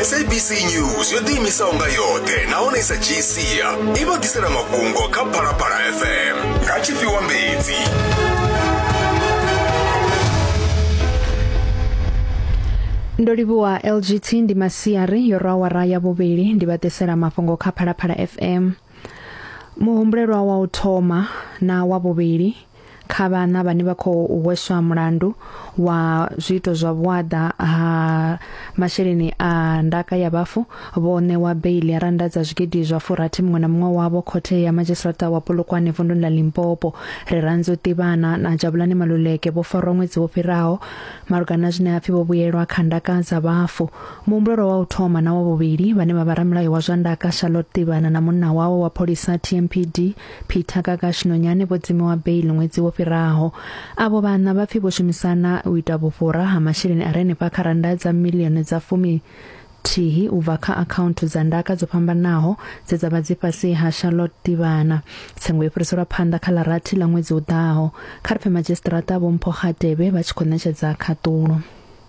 sabc news yo ḓiimisaho nga yoṱhe nahone i sa dzhii sia i vha ḓisela mafhungo kha phalaphala fm nga tshifhiwa mbedzi ndo livhuwa lgt ndi masiari yo rwa awara ya vhuvhili ndi vha ḓisela mafhungo kha phalaphala fm muhumbulelwa wa u thoma na wa vhuvhili kha vhana vhane vha khou hweswa mulandu wa zwiito zwa vhuaḓa ha masheleni a ndaka ya vhafu vho ṋewa beili ya randa dza zwigidi zwa furathi muṅwe na muṅwe wavho khothe ya madzhisiṱa wa polokwane vunduni ḽa limpopo ri randzo ṱivhana na jabulani maluleke vho farwa ṅwedzi wo fhiraho malugana na zwine hapfi vho vhuyelwa kha ndaka dza vhafu Muhumbulelwa wa u thoma na wa vhuvhili vhane vha vha ramulayo wa zwa ndaka Charlotte Tivhana na munna wawe wa pholisa TMPD Peter Kakashi Nonyane vho dzimiwa bail ṅwedzi wo fhiraho. Avho vhaṋa vha pfi vho shumisana u ita vhufhura ha masheleni a re henefha kha rannda dza miḽioni dza fumi thihi u bva kha akhaunthu dza ndaka dzo fhambanaho dze dza vha dzi fhasi ha Charlotte Tivhana. Tsengo yo fhiriselwa phanḓa kha ḽa rathi ḽa ṅwedzi u ḓaho. Kha ri pfe madzhisiṱiraṱa Vho Mpho Kgatebe vha tshi khou ṋetshedza khaṱulo.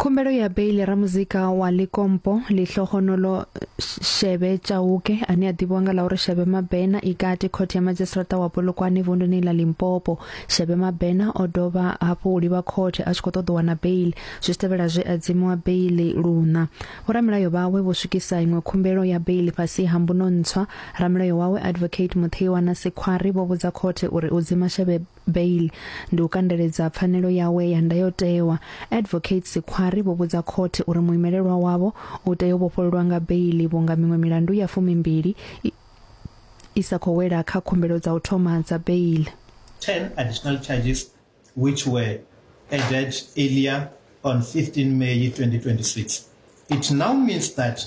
khumbelo ya beili ramuzika wa likompo lihlohonolo shebe chauke ane a ḓivhiwa nga ḽa uri shebe mabena i kati khothe ya madzhisiṱiraṱa wa polokwane vunduni ḽa limpopo shebe mabena o dovha hafhu u livha khothe a tshi khou ṱoḓa u wana beili zwi tevhela zwe a dzimiwa beili luṋa vhoramilayo vhawe vho swikisa iṅwe khumbelo ya beili fhasi ha mbuno ntswa ramilayo wawe advocate mutheiwa na sikhwari vho vhudza khothe uri u dzima shebe bail ndi u kandeledza pfanelo yawe ya ndayotewa advocate sikhwari vho vhudza khothe uri muimelelwa wavho u tea u vhofhololwa nga beili vhunga miṅwe milandu ya fumimbili i, i sa khou wela kha khumbelo dza u thoma dza beili 10 additional charges which were added earlier on 15 May 2026. It now means that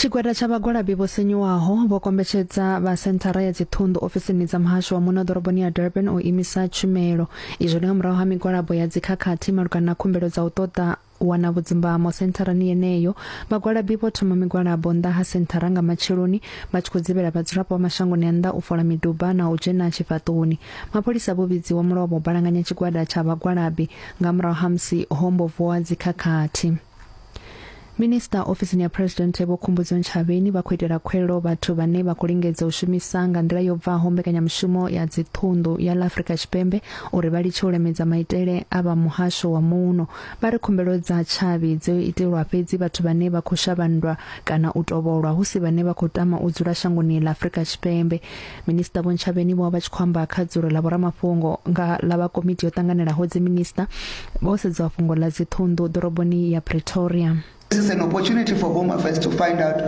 tshigwada tsha vhagwalabi vho sinyuwaho vho kombetshedza vha senthara ya dziṱhunḓu ofisini dza muhasho wa muno ḓoroboni ya durban u imisa tshumelo izwo ndi nga murahu ha migwalabo ya dzikhakhathi malugana na khumbelo dza u ṱoḓa wana vhudzimbamo sentharani yeneyo vhagwalabi vho thoma migwalabo nnḓa ha senthara nga matsheloni vha tshi khou dzivhela vhadzulapo vha mashangoni a nnḓa u fola miduba na u dzhena tshifhaṱoni mapholisa vho vhidziwa mulovha u balanganya tshigwada tsha vhagwalabi nga murahu ha musi hombo vuwa dzikhakhathi minista ofisini ya president vho khumbudzo ntshavheni vha khou itela khwelo vhathu vhane vha khou lingedza u shumisa nga nḓila yo bvaho mbekanyamushumo ya dziṱhunḓu ya ḽa afrika tshipembe uri vha litshe u lemedza maitele a vha muhasho wa muno vha ri khumbelo dza tshavhi dzo itelwa fhedzi vhathu vhane vha khou shavhandwa kana u tovholwa hu si vhane vha khou tama u dzula shangoni ḽa afrika tshipembe Minisiṱa Vho Ntshavheni vho vha tshi khou amba kha dzulo ḽa vhoramafhungo nga ḽa vha komiti yo ṱanganelaho dziminisiṱa vho sedzwa fhungo ḽa dziṱhunḓu ḓoroboni ya Pretoria. This is an opportunity for Home Affairs to find out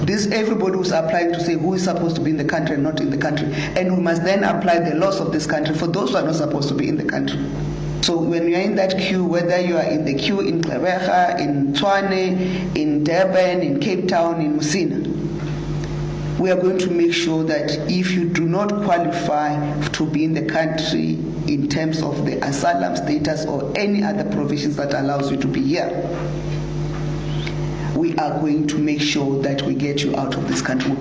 this everybody who's applying to say who is supposed to be in the country and not in the country and we must then apply the laws of this country for those who are not supposed to be in the country. So when you are in that queue, whether you are in the queue in Gqeberha, in Tshwane, in Durban, in Cape Town, in Musina, we are going to make sure that if you do not qualify to be in the country in terms of the asylum status or any other provisions that allows you to be here, we are going to make sure that we get you out of this country.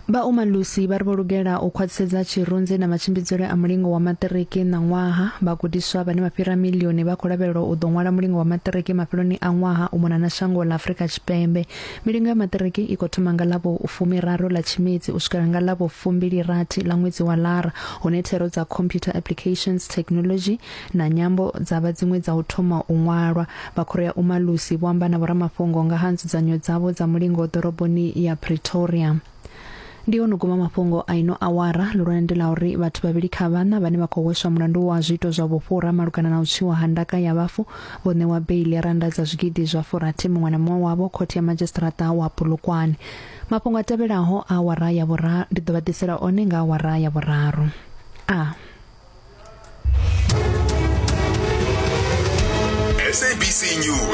vha umalusi vha ri vho lugela u khwaṱhisedza tshirunzi na matshimbidzele a mulingo wa maṱiriki ṋaṅwaha vhagudiswa vhane vha fhira milioni vha khou lavhelelwa u ḓo ṅwala mulingo wa maṱiriki mafheloni a ṅwaha u mona na shango ḽa afurika tshipembe Milingo ya maṱiriki i khou thoma nga ḽa vhufumiraru ḽa Tshimedzi u swikela nga ḽa vhufumbili-rathi ḽa ṅwedzi wa Lara, hune thero dza Computer Applications, Thekinoḽodzhi na Nyambo dza vha dziṅwe dza u thoma u ṅwalwa. Vha Khoro ya Umalusi vho amba na vhoramafhungo nga ha nzudzanyo dzavho dza mulingo ḓoroboni ya Pretoria. ndi ono guma mafhungo a ino awara lulwane ndi la uri vhathu vhavhili kha vhana vhane vha khou hweswa mulandu wa zwiito zwa vhufhura malugana na u tswiwa ha ndaka ya vhafu vho ṋewa beili ya randa dza zwigidi zwa furathi muṅwe na muṅwe wavho khothe ya madzhisiṱiraṱa wa pulukwane mafhungo a tevhelaho a awara ya vhuraru ndi ḓo vha ḓisela one nga awara ya vhuraru a SABC News